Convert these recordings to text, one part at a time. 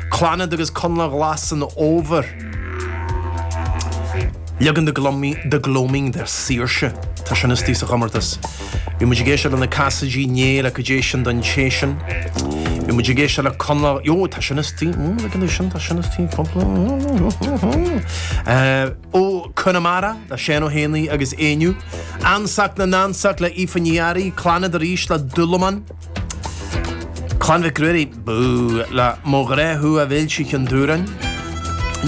Clannad agus Coinleach Ghlas an Fhómhair. Leagan The Gloaming de Saoirse. Tá sin istigh sa chomórtas. Bhí muid ag éisteacht le Na Casaidigh inné le Cad é Sin don Té Sin. Bhí muid ag éisteacht le Connla, Jó, tá sin istigh, mm, leagan de sin, tá sin istigh, cúpla, eh, Ó Conamara le Seán Ó hÉanaí agus Éinniú. Ansacht na nAnsacht le Aoife Ní Fhearraigh, Clannad arís le Dúlaman. Clann Mhic Ruairí, bú! Le mo ghrá thú a Mhéilte Cheann Dubhráin.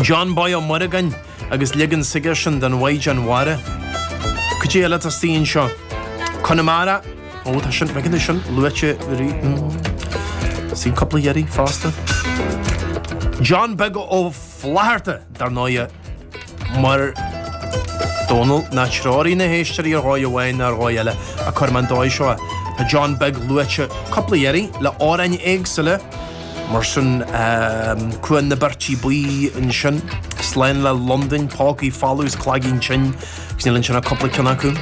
John Boy Ó Muireagáin agus leagan Sigerson den Mhaighdean Mhara. Cad é eile atá istigh anseo? Conamara? Ó, tá sin, beidh anois sin luaite rí-hm. Suí cúpla iarraidh fosta. John Beag Ó Flatharta, dar ndóighe. mar Dónall, ná treoraigh na héisteoirí ar dhóigh amháin ná ar dhóigh eile, ach cuirfidh mé an dóigh seo é. Tá John Beag luaite cúpla iarraidh, le amhráin éagsúla, mar sin, Cuan na Beirtrí Buí ansin, Slán le Londain, Pócaí Folamh is Cloigeann Tinn, agus níl ansin ach cúpla ceann acu.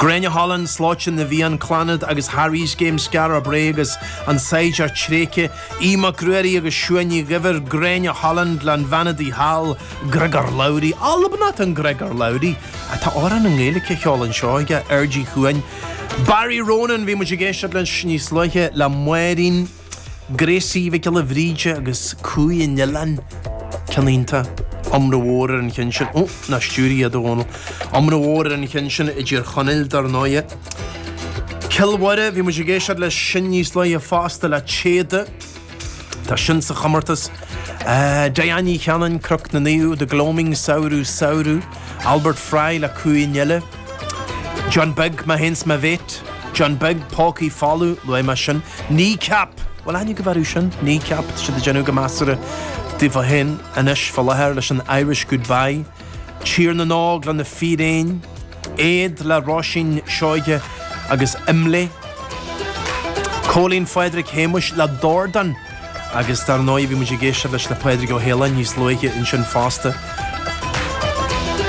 Gráinne Holland, Slóite na bhFiann, Clannad agus Harry's Game, Skara Brae agus An Saighdiúir Tréigthe, Aodh Mac Ruairí agus Siún Ní Dhuibhir, Gráinne Holland, le An Bhean Udaí Thall, Griogair Labhruidh, Albanach, an Griogair Labhruidh atá amhrán i nGaeilge á cheol anseo aige, Aird Uí Chuain, Barry Ronan, bhí muid ag éisteacht leis níos luaithe le Máirín, Gracie Mhic Giolla Bhríde agus Cumhaidh an Oileáin, ceann iontach, iomrá mhór ar an cheann sin, ó, ná stiúir iad a Dhónaill! Iomrá mhór ar an cheann sin i dTír Chonaill dar ndóigh. Cill Mhoire, bhí muid ag éisteacht leis sin níos luaithe fosta le Téada. Tá sin sa chomórtas. Diane Ní Chanainn, Cnoc na Naomh, The Gloaming, Samhradh, Samhradh. Albert Fry le Cumhaidh an Fhile. John Beag, Má théanns má bhéit. John Beag, Pócaí Folamh, luaigh mé sin. Kneecap, bhuel aithne go bhfearú sin, Kneecap, siad ag déanamh go measartha daofa féin anois fá láthair leis an Irish Goodbye. Tír na nÓg le na Fíréin. Éad le Róisín Seoighe agus Imlé. Cóilín Phádraig Shéamais le Dordán. Agus dar ndóigh bhí muid ag éisteacht leis le Pádraig Ó hAoláin níos luaithe ansin fosta.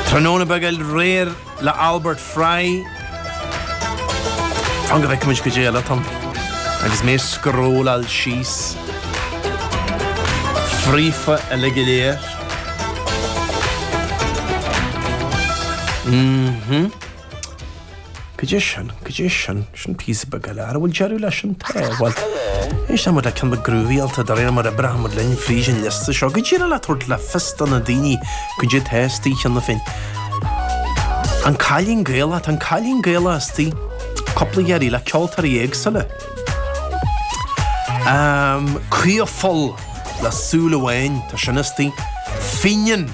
Tráthnóna Beag Aréir le Albert Fry. Fan go bhfeicfidh muid cad é eile atá ann. Agus mé ag scrolláil síos fríofa uilig go léir. Cad é sin, cad é sin. Sin píosa beag eile. An bhfuil deireadh leis? Tá. Bhuel, éistfidh muid le ceann beag groovyáilte de réir mar a oibreoidh muid linn fríd an liosta seo. Go díreach le tabhairt le fios do na daoine cad é atá istigh cheana féin. An Cailín Gaelach, tá An Cailín Gaelach istigh cúpla iarraidh le ceoltóirí éagsúla. Creamhpholl le Súil Amháin, tá sin istigh. Fenian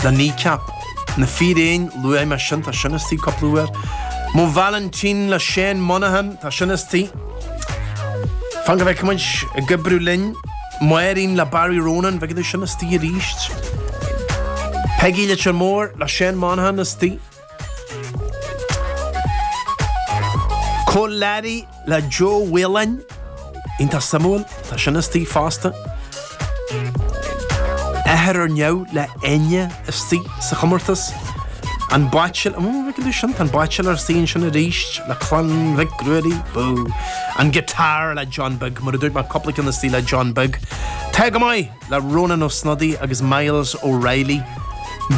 le Kneecap. Na Fíréin, luaigh mé sin, tá sin istigh, cúpla uair. Mo Vailintín le Seán Monaghan, tá sin istigh. Fan go bhfeice muid ag oibriú linn. Máirín le Barry Ronan, bheidh tá sin istigh arís. Peigí Leitir Móir le Seán Monaghan istigh. Cór Learaí le Joe Whelan, iontach suimiúil, tá sin istigh fosta. Athair ar Neamh le Enya istigh sa chomórtas. An Baitsiléir, ó, bhí go dtí sin, tá an Baitsiléir istigh ansin arís le Clann Mhic Ruairí, bú! An Guitar le John Beag, mar a dúirt mé cúpla ceann istigh le John Beag. Tá Go Maith! le Rónán Ó Snodaigh agus Myles O'Reilly.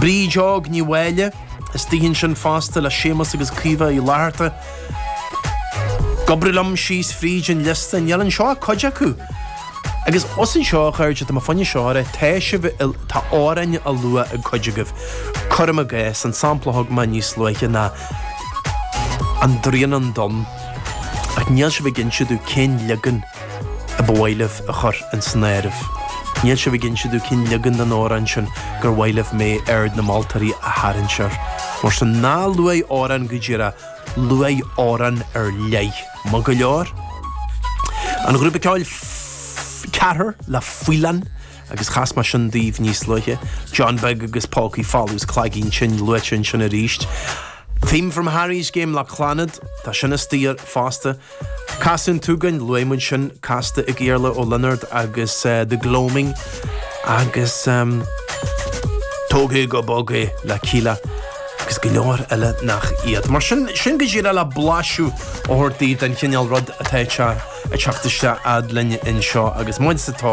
Bríd Óg Ní Mháille, istigh ansin fosta le Séamus agus Caoimhe Uí Fhlatharta. Ag oibriú liom síos fríd an liosta, níl anseo ach cuid acu! Agus os anseo a chairde, tá mo foinsieoire, tá sibh i, tá amhráin á lua ag cuid agaibh, cuirim i gcás, an sampla a thug mé níos luaithe ná An Droighneán Donn. Ach níl sibh ag inse domh cén leagan. A ba mhaith libh a chur insan áireamh? Níl sibh ag inse domh cén leagan den amhrán sin gur mhaith libh mé aird na moltóirí a tharraingt air. Mar sin, ná luaigh amhrán go díreach, luaigh amhrán ar leith. Maith go leor? An grúpa ceoil Ceathrar le Faoileán agus chas mé sin daoibh níos luaithe. John Beag agus Pócaí Folamh is Cloigeann Tinn luaite ansin arís. Theme from Harry's Game le Clannad, tá sin istigh fosta. Casadh an tSúgáin luaigh muid sin, casta ag Iarla Ó Lionáird agus The Gloaming agus Tóg É Go Bog É le Kíla agus go leor eile nach iad. Mar sin, sin go díreach le blaiseadh a thabhairt daoibh den chineál rud atá ag teacht isteach fhad linn anseo agus muid sa tóir.